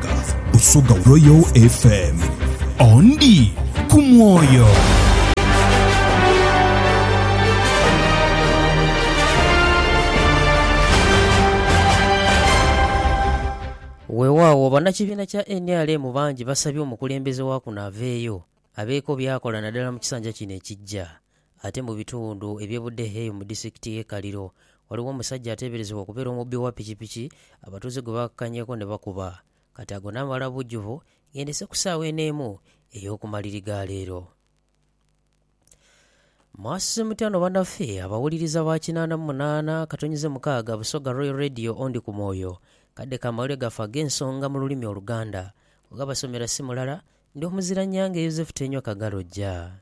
Africa osoga Royal FM ondi ku mwoyo. Weewaawo bannakibiina kya nrm bangi basabye omukulembeze wa kuno aveeyo abeeko by'akola naddala mu kisanja kino ekijja. Ate mu bitundu eby'e Budehe eyo mu disitikiti y'e Kaliro, ghaligho omusajja ateeberezebwa okubeera omubbi wa pikipiki abatuuze gwe baakakanyeeku ni bakuba. Kati ago naamala bujjuvu ng'endese ku saawa eno emu ey'oku maliri ga leero. Mwasuze mutya no banaffe abawuliriza ba kinaana mu munaana katonyize mukaaga Busoga Royal Radio Ondi ku Mwoyo. Kadde ka mawulire gaffe ag'ensonga mu lulimi Oluganda. Oghabasomera si mulala, ndi Omuziranyange Yozefu Tenywa Kagalojja.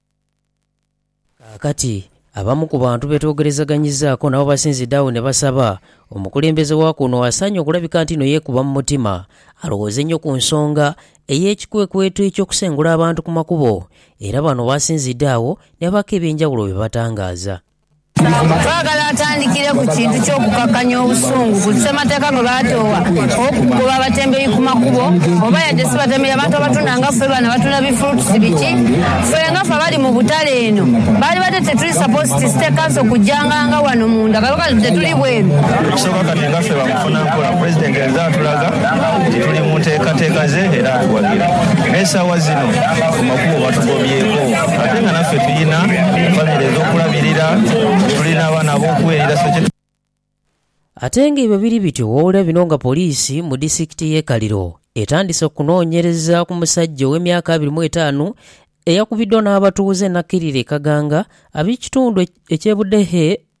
Kaakati, abamu ku bantu be twogerezaganyizaaku nabo basinzidde agho ne basaba omukulembeze wa kuno asaanye okulabika nti inho yeekuba mu mutima alowooze inho ku nsonga ey'ekikwekweto eky'okusengula abantu ku makubo era bano basinzidde agho ne babaako eby'enjawulo bye batangaaza. Baagala atandikire ku kintu ky'okukakkanya obusungu ku Ssemateeka gwe baatoowa ow'okugoba abatembeyi ku makubo, oba yadde si batembeyi, abantu abatunda nga ffe bano abatunda bi fruits biki? Ffe nga ffe abali mu butale eno, baalibadde tetuli supposed to State Council kujjanga nga wano munda, kano kati tetuli bweru. Ekisooka kati nga ffe ba mufuna mpola, President azze atulaga nti tuli mu nteekateeka ze era atuwagira. Naye essaawa zino ku makubo batugobyeeko. Ate nga naffe tulina famire edh'okulabirira, tulina abaana ab'okuweerera, so kye. Ate nga ibwe biri bityo, wabula bino nga poliisi mu disitikiti y'e Kaliro etandise okunoonyereza ku musajja ow'emyaka abiri mu etaanu eyakubiddwa n'abatuuze n'akkirira e Kaganga ab'ekitundu eky'e Budehe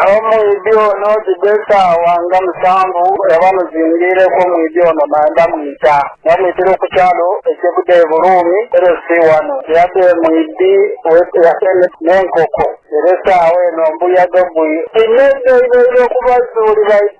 Agho mwidhi ono dhidha esaawa nga musanvu era bamuzingiireku omwidhi ono naye bamwita. Bamwitira oku kyalo ekye Budeeburuumi, ere si ghano. Yadha e mwidhi we yateme n'enkoko, era esaawa eno mbuyaga gwi. Inho eidho eibaire okubazuulira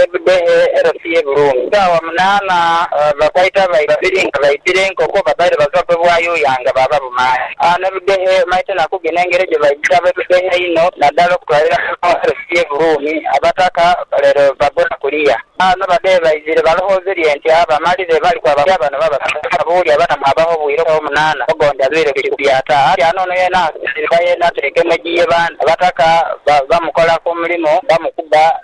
E Budehe era si ye Buruumi. Sawa munaana bakwaita abayi babiri nga baidhira enkoko, babaire bava kwe bwayuuya nga baaba bumaani. A ne Budehe maite na kugina engeri gye baidhira abe Budehe inho nadala okutwalira muno era si ye Buruumi. Abataka lero bagona kuliya a no badhehe baidhire balowooze lye nti a bamalire bali kwaba kulya bano babasanga nga buuli aba na mwaabaho obwire obwo munaana ogondi alwire ku kikubya ta a kyaana ono yeena asinzire ku bayeena ateekemu egiye bandi. Abataka bamukola ku mulimu bamukuba.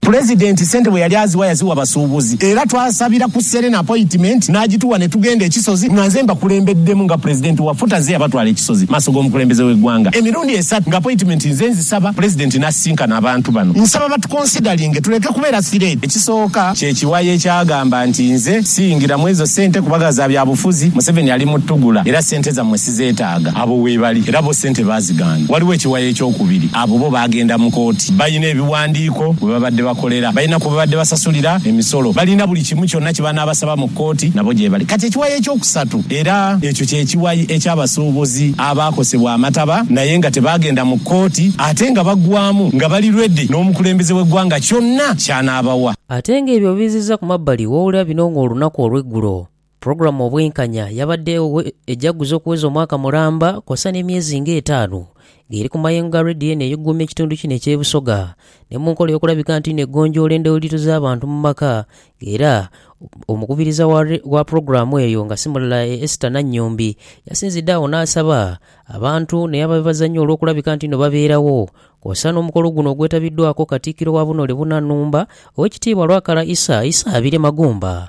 Pulezidenti sente bwe yali aziwa yaziwa basuubuzi era twasabira ku Serena apoyitimenti n'agituwa ne tugenda e Kisozi nga nze mbakulembeddemu nga Pulezidenti wa FUTA ze yabatwala e Kisozi mu maaso g'omukulembeze w'eggwanga emirundi esatu nga apoyitimenti nze nzisaba Pulezidenti n'asisinkana abantu bano. Nsaba batukonsidalinge tuleke kubeera sireedi. Ekisooka kye kiwayi ekyagamba nti nze siyingira mu ezo sente kubaga za byabufuzi, Museveni ali mu ttugula era sente zammwe zeetaaga, abo weebali era bo sente baazigaana. Waliwo ekiwayi ekyokubiri, abo bo baagenda mu kooti. Balina ebiwandiiko we babadde bakolera, balina kwe babadde basasulira emisolo, balina buli kimu kyonna kye banaabasaba mu kooti, nabo gyebali. Kati ekiwayi ekyokusatu, era ekyo kye kiwayi eky'abasuubuzi abaakosebwa amataba naye nga tebaagenda mu kooti ate nga baggwaamu nga bali ready n'omukulembeze w'eggwanga kyonna ky'anaabawa. Ate ng'ebyo obiizizza ku mabbali, wowulira bino ng'olunaku olw'eggulo, Pulogulaamu Obwenkanya yabaddeegho ejaguza okuweza omwaka mulamba kwosa n'emyezi nga etaanu ng'eri ku mayengo ga Radio eno ey'okuguuma ekitundu kino eky'e Busoga ni mu nkola ey'okulabika nti ino egonjoola endowliro z'abantu mu maka nga era omukubiriza wa pulogulaamu eyo nga si mulala ye Esther Nannyombi yasinzidde agho n'asaba abantu ne ababibazannya olw'okulabika nti ino babeerawo kwosa n'omukolo guno ogwetabiddwako Katikkiro wa Bunole Bunanumba Owekitiibwa Lwakala Isa Isa Abire Magumba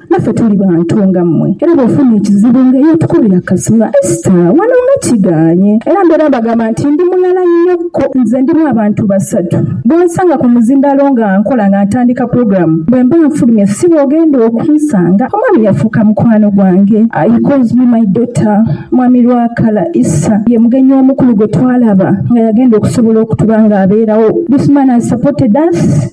Naffe tuli bantu nga mmwe, era bw'ofuna ekizibu nga eyo tukubira kasula. Esita, Wano nga kigaanye! Era mbeera mbagamba nti ndi mulala inhoku nze ndimu abantu basatu. Bw'onsanga ku muzindaalo nga nkola nga ntandika pulogulaamu, bwe mba nfulumye si bw'ogenda okunsanga. Omwami yafuuka mukwano gwange. He calls me my daughter. Mwami Lwakala, Isa ye mugenyi omukulu gwe twalaba nga yagenda okusobola okutuba nga abeerawo. This man has supported us.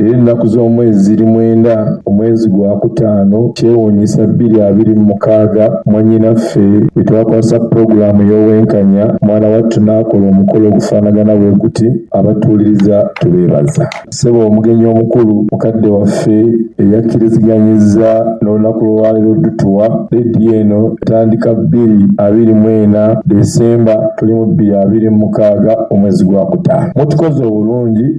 Era enaku z'omwezi ziri mwenda, omwezi gwa kutaano, kyewuunyisa bbiri abiri mu mukaaga, mwannyinaffe bwe twakwasa pulogulaamu y'obwenkanya, mwana wattu n'akola omukolo ogufaanagana bwe guti. Abatuwuliriza tubeebaza. Ssebo omugenyi omukulu, mukadde waffe eyakkiriziganyizza n'olunaku lw'olwaleero odutuwa, leediyo eno etandika bbiri abiri mu ena, Ddesemba, tuli mu bbiri abiri mu mukaaga, omwezi gwa kutaano. Mutukoze obulungi.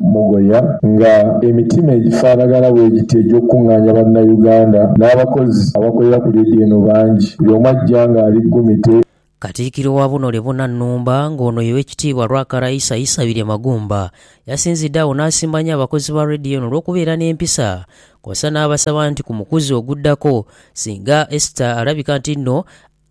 Mugoya nga emitima egifanagana bwegiti egyokukung'aanya Bannayuganda n'abakozi abakolera ku leediyo eno bangi, buli omu ajja ng'ali ggumite. Katikkiro wa buno Lebona Nnumba ng'ono ye Wekitiibwa Rwakara Isa Isabirye Magumba yasinzidde agho n'asimba nnyo abakozi ba leediyo eno olw'okubeera n'empisa kwosa n'abasaba nti ku mukuzi oguddako singa Esther alabika nti nno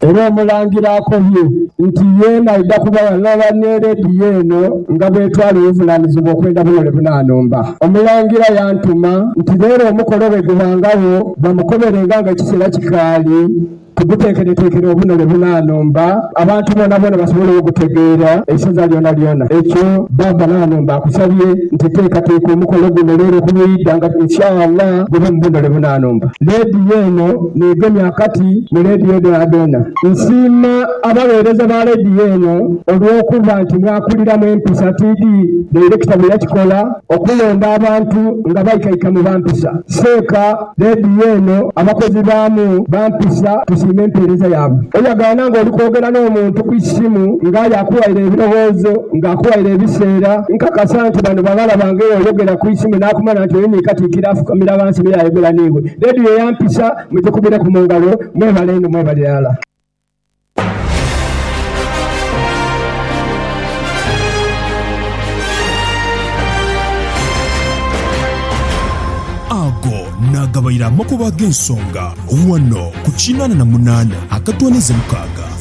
Era Omulangira akobye nti yeena aidha kuba ghalala ni leediyo eno nga bwetwala obuvunaanizibwa okwenda bunole bunanumba. Omulangira yantuma nti leero omukolo bwegubangagho bamukoberenga nga ekiseera kikaali tuguteekereteekere obunole bunanumba abantu boonaboona basobole ogutegeera eisaza lyonalyona. Ekyo Bbaabba Nanumba akusabye nti teekateeka omukolo guno leero ku lw'eidha nga Insha Allah gube mu bunole bunanumba. Leediyo eno. Neegemye akati mu leediyo dhoonadhoona. Nsiima abagheereza ba leediyo eno olw'okuba nti mwakuliramu empisa tiidhi dayirekita bwe yakikola okulonda abantu nga baikaikamu ba mpisa. Seeka leediyo eno abakozi baamu ba mpisa tusiima empeereza yaabwe. Oyagaana ng'oli kwogera n'omuntu ku isimu ng'aye akuwaire ebirowoozo, ng'akuwaire ebiseera, nkakasa nti bano baghala bange. Oyogera ku isimu n'akumala nti oyo ni katikkiro afukamira ghansi me yaayogera n'iwe. Dheedhi ye ya mpisa mugikubiraku mu ngalo. Mwebale inho mwebale irala. Ago naagabaire amakubo ag'ensonga ghano ku kinaana na munaana akatooneza mukaaga.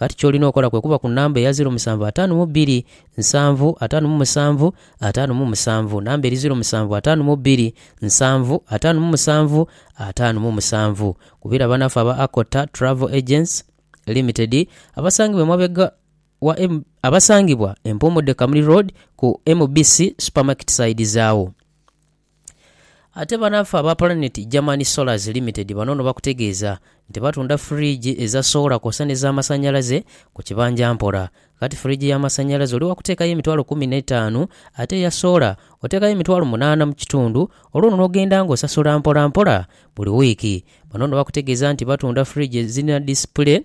Ghati ky'olina okola kwe kuba ku namba eya ziro musanvu ataanu mu bbiri, nsanvu, ataanu mu musanvu, ataanu mu musanvu. Namba eri ziro musanvu ataanu mu bbiri, nsanvu, ataanu mu musanvu, ataanu mu musanvu. Kubira banaffe aba Akota Travel Agents Limited abasangibwa emabega wa M, abasangibwa e Mpuumudde Kamuli Road ku MBC Supermarket side zaawo. Ate banaffe aba Planet Germany Solars Limited bano no bakutegeeza nti batunda fridge eza soola kwosa ne za masanyalaze ku kibanja mpola. Kati fridge ya masanyalaze oli wakuteekayo emitwalo kumi ne taanu ate eya soola oteekayo emitwalo munaana mu kitundu olwo no nogenda nga osasula mpola mpola buli wiiki. Bano no bakutegeeza nti batunda fridge ezirina display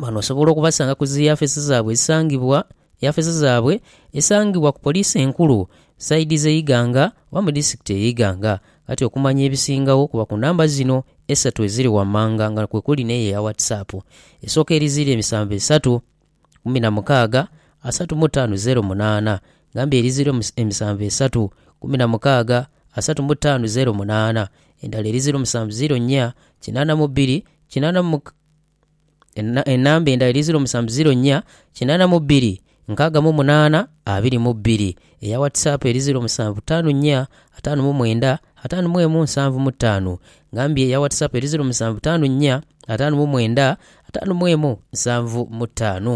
Bano osobola okubasanga ku zi yafeesi zaabwe ezisangibwa yafeesi zaabwe esangibwa ku poliisi enkulu sayidi z'e Iganga oba mu disitulikiti ey'e Iganga. Kati okumanya ebisingagho kuba ku namba zino esatu eziri wammanga nga kwe kuli n'eyo eya WhatsApp esooka eri zeero emisanvu esatu kumi na mukaaga asatu mu ttaano zeero munaana gamba eri zeero emisanvu esatu kumi na mukaaga asatu mu ttaano zeero munaana endala eri zeero musanvu zeero nnya kinaana mu bbiri kinaana mu Enamba endala eri ziro musanvu ziro nnya kinana mu bbiri nkaaga mu munaana abiri mu bbiri. Eya WhatsApp eri ziro musanvu taanu nnya ataanu mu mwenda ataanu mu emu nsanvu mu taanu. Ngambye eya WhatsApp eri ziro musanvu taanu nnya ataanu mu mwenda ataanu mu emu nsanvu mu taanu.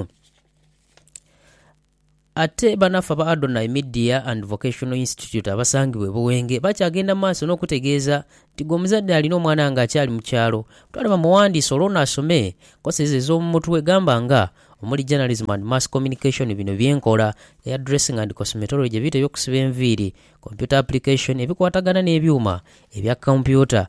Ate banaffe aba Adonai Media and Vocational Institute abasangibwa e Buwenge bakyagenda mu maaso n'okutegeeza nti gwe omuzadde alina omwana nga akyali mu kyalo, twale bamuwandiise olwo ono asome enkosa ezo ez'omu mutwe gamba nga omuli Journalism and Mass Communication, bino bye nkola, Hairdressing and Cosmetology, ebiito eby'okusiba enviiri, Computer Application, ebikwatagana n'ebyuma ebya kompyuta,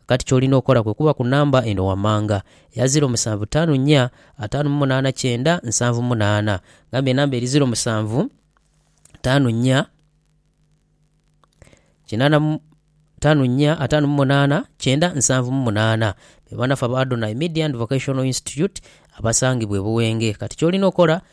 Kakati ky'olina okola kwe kuba ku namba eno wammanga, eya ziro musanvu taanu nnya, ataanu mu munaana kyenda, nsanvu mu munaana. Ngamba enamba eri ziro musanvu taanu nnya, kinaana mu taanu nnya, ataanu mu munaana kyenda, nsanvu mu munaana. Be banaffe aba Adonai Media and Vocational Institute abasangibwa e Buwenge. Kati ky'olina okola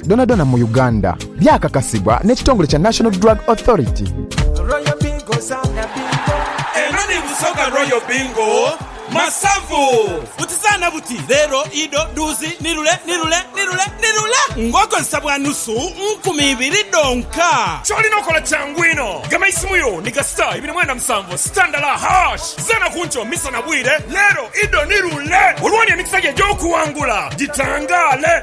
Dhonadhona mu Uganda, byakakasibwa n'ekitongole kya National Drug Authority. Royal Bingo zaana bingo. Eno ni Busoga Royal Bingo Masavu. Buti zaana buti, leero, ido, dhuuzi, nirule, nirule, nirule, nirule ng'okozesa bwa nusu nkumi ibiri dhonka. Ky'olina okola kyangu inho, gema eisimu yo ni ga star ibiri mwenda musanvu star ndala hash. Zaana ku nkyo, misa na bwire, leero, ido, nirule olwooni emikisa gyo egy'okuwangula gitangaale.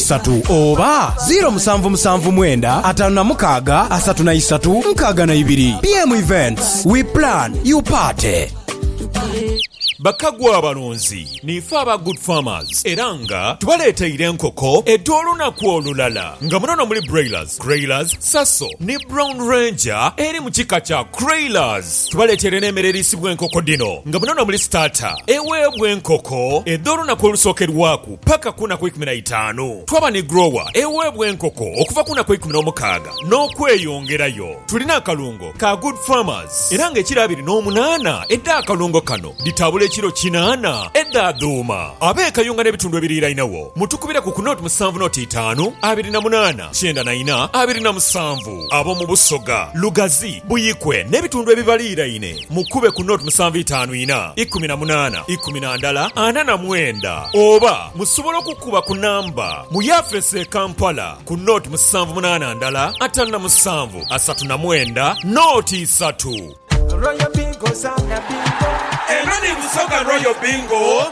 isatu oba ziro musanvu musanvu mwenda atanu na mukaaga asatu na isatu nkaaga na ibiri. BM Events, we plan, you party. Bakagu abalunzi niife aba Good Farmers era nga tubaleeteire enkoko edh'olunaku olulala nga munono muli Broilers, Creilers, Saso ni Brown Ranger eri mu kika kya Creilers. Tubaleeteire n'emere eriisibwa enkoko dhino nga munono muli Starter eweebwa enkoko edh'olunaku olusookerwaku. paka ku naku eikumi na itaanu. Twaba ni grower eweebwa enkoko okuva ku naku eikumi n'omukaaga n'okweyongerayo. Tulina akalungo ka Good Farmers era nga ekiro abiri n'omunaana edh'akalungo kano dhitabula ekiro kinaana edha dhuuma. Ab'e Kayunga n'ebitundu ebiriirainagho mutukubireku ku nought musanvu nought itaanu abiri na munaana kyenda na ina abiri na musanvu. Ab'omu Busoga, Lugazi, Buikwe n'ebitundu ebibaliiraine Mukube ku note musanvu itaanu ina ikumi na munaana ikumi na ndala ana na mwenda oba musobola okukuba ku namba mu yafeesi e Kampala ku note musanvu munaana ndala ataanu na musanvu asatu na mwenda note isatu. Eno ni Busoga Royal Bingo.